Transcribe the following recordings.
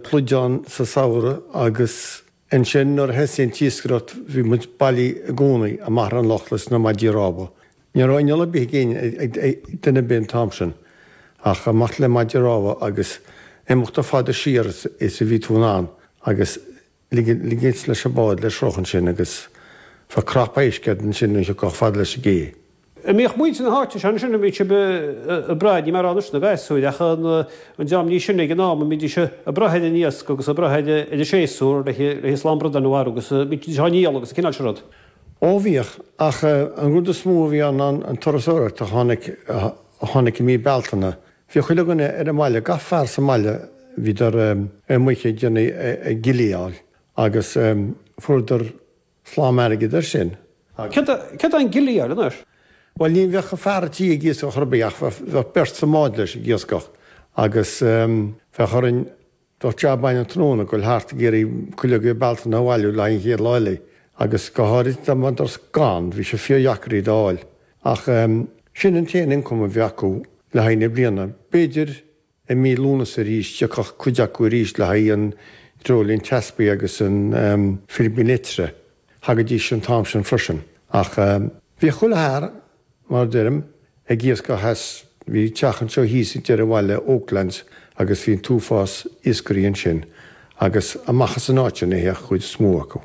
pluid ann sa samhradh agus ansin nuair a thosaigh an t-iascaireacht bhí muid bailithe i gcónaí amach ar an loch leis na maidí rámha. Ní raibh inneall ar bith ag éinne, ag duine ar bith an t-am sin ach amach le maidí rámha agus imeacht chomh fada siar is a bhí tú in ann agus ligint leis an bád le sruth ansin agus bheadh cnap éisc agat ansin nuair a thiocfá chomh fada leis an gcé. an mbíodh muintir na háite seo ansin, an mbíodh sibh ag brath, níl mé ag rá anois na gasúir, ach an dream níos sine ag an am, an mbídís ag brath ar an iasc agus ag brath ar an séasúr leis an slám bradáin a mharú agus bídís á ndíol agus an cineál sin rud. Ó bhíodh, ach an rud is mó a bhí ann ná an turasóireacht a tháinig, a tháinig i mí Bealtaine. Bhíodh chuile dhuine ar an mbaile, gach fear sa mbaile, bhíodar amuigh ag déanamh, ag gilleáil agus fuaireadar Slám airgid ar sin. Cé, céard é an gilleáil anois? Bhuel, ní bheadh fear an tí ag iascach ar bith, ach bheadh beirt sa mbád leis ag iascach, agus bheadh orainn, bheadh job againn an tráthnóna ag dul thart ag iarraidh cuileoga Bealtaine a bhailiú le haghaidh an chéad lá eile, agus go háirid dá mbeidís gann, bhí sé fíordheacair iad a fháil. Ach sin an t-aon ioncam a bhí acu le haghaidh na bliana. B'fhéidir. I mí Lúnasa arís, thiocfadh cuid acu arís le haghaidh an dreoilín teaspaigh agus an pilibín eitre, thagaidís an t-am sin freisin. Ach bhíodh chuile fhear, mar a deirim, ag iascach theas, bhí teach anseo thíos ag deireadh an bhaile, Oaklands agus bhí an t-uafás iascairí ansin, agus amach as an áit sin a théadh an chuid is mó acu.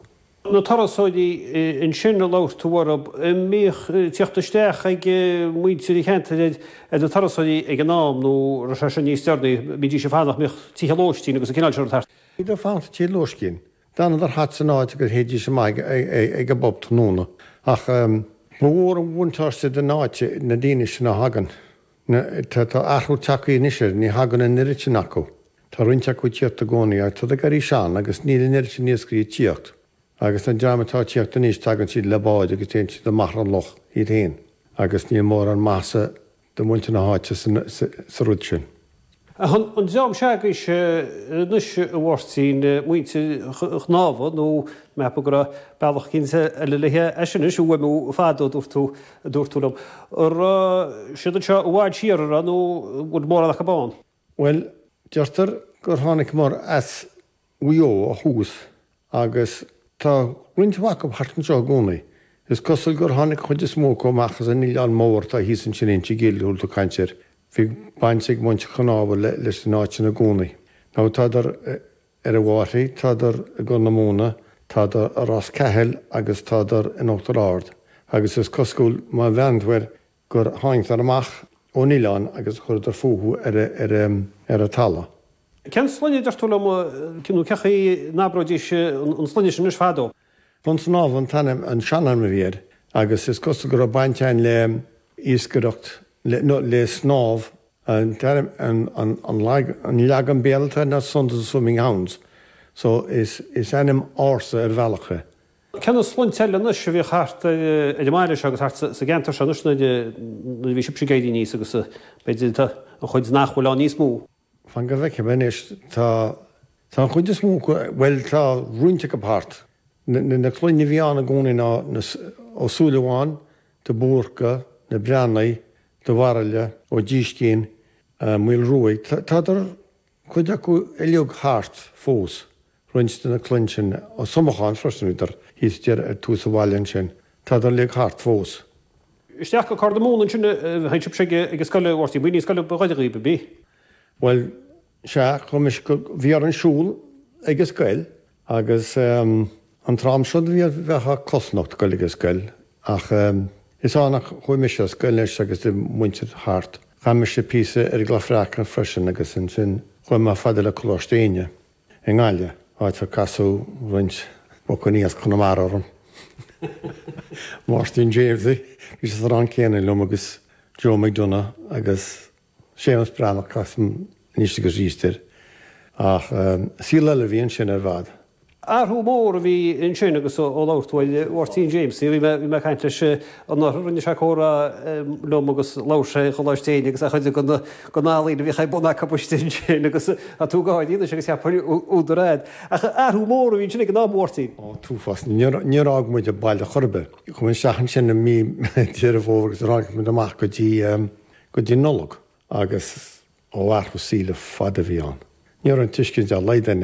na turasóirí ansin a labhair tú orthu, an mbíodh tíocht isteach ag muintir an cheantair ar na turasóirí ag an am nó raibh sé sin níos deireanaí, an mbídís ag fanacht, bhíodh tithe lóistín agus an cineál sin rud thart. Iad ag fanacht i dtithe lóistín, d'fhanadar thart san áit agus théidís amach ag an bpub tráthnóna. Ach ba mhór an bhuntáiste don áit iad na daoine sin a thagann. Tá, tá athrú tagtha anois air, ní thagann an oiread sin acu. Tá roinnt acu ag tíocht i gcónaí ach tádar ag éirí sean agus níl an oiread sin iascairí ag tíocht. Agus an dream atá ag tíocht anois tagann siad le báid agus téann siad amach ar an loch iad féin agus níl mórán maitheasa do mhuintir na háite sa rud sin. Ach an dream s'agaibhse anois, a Mháirtín, muintir Chonámha, nó ceapaim go raibh bealach eicínt eile le hé sin a fhuaimniú fadó, a dúirt tú, a dúirt tú liom. An raibh siad anseo i bhfad siar, an raibh, nó an bhfuil mórán acu ann? Bhuel, deirtear gur tháinig muid as. Mhaigh Eo ó thús, agus tá roinnt mhaith acu thart anseo i gcónaí. Is cosúil gur tháinig an chuid is mó acu amach as an Oileán Mór atá thíos ansin Inse an Ghaill a bhfuil tú ag caint air. Bhí baint ag muintir Chonámha leis an áit sin i gcónaí. Now tádar ar an bhFairche, tádar i gCorr na Móna, tádar i Ros Cathail agus tádar in Uachtar Ard. Agus is cosúil, má bhreathnaíonn tú ar gur tháinigeadar amach ón oileán agus chuireadar fúthu ar a' talamh. Cén sloinne, deir tú liom, nó cé chaoi n-abróidís an sloinne sin anois? Fadó. Consnámh an t-ainm, an seanainm a bhí air, agus is cosúil go raibh baint ann le iascaireacht, le, nó, le snámh. An t-ainm, an leagan Béarla atá air ná Sons of the Swimming Hounds, so is ainm ársa ar bhealach é. Cé na sloinnte eile anois a bhíodh thart ar an mbaile seo agus thart sa gceantar seo anois nuair a bhí sibhse ag éirí aníos agus b'fhéidir tá cuid nach bhfuil ann níos mó. Fan go bhfeicfidh mé anois, tá, tá an chuid is mó acu, bhuel tá roinnt acu thart. Na, na cloinne a bhí ann i gcónaí ná na, Ó Súilleabháin, de Búrca, na Breathnaigh, de Bharaille, Ó Díscín, Maolruaidh, tádar, cuid acu uilig thart fós, roinnt de na cloinn sin Ó Somacháin freisin, bhíodar thíos, deireadh, ar tús an bhaile ansin, tádar uilig thart fós. isteach go Corr na Móna ansin, a théadh sibhse ag an scoil, Mháirtín b'in í an scoil ba ghaire dhaoib, ab í? Bhuel, sea, chuaigh mise go, bhí orainn siúl ag an scoil, Agus an t-am seo de bhliain bheifeá cosnocht ag goil ag an scoil ach is ann a chuaigh mise a' scoil anois agus de mhuintir thart. Chaith mise píosa ar an gCloch Bhreac ann freisin agus ansin chuaigh mé chomh fada le Coláiste Éinne i nGaillimh, áit ar casadh roinnt buachaillí as Conamara orm, Máirtín Jaimsie, bhí sé sa rang céanna liom agus Joe McDonagh agus. Séamus Breathnach as an Institiúid agus Risteard, ach saol eile a bhí ansin ar fad. Athrú mór a bhí ansin agus ó labhair tú ar Mháirtín Jaimsie, bhí mé ag caint leis an Athar, rinne sé comhrá liom agus labhair sé ar Choláiste Éinne agus chuid de na healaíona a bhíodh ar bun agaibhse ansin agus tá tú ag gáirí anois agus cheapfainn údar agat. Ach athrú mór a bhí ansin ag an am, a Mháirtín. Ó, an t-uafás, níor fhág muid an baile chor ar bith. Chuaigh muid isteach ansin i mí Dheireadh Fómhair agus níor tháinig muid amach go dtí go dtí Nollaig agus ó athrú saoil ar fad a bhí ann. Ní raibh aon tuiscint dá laghad ag an.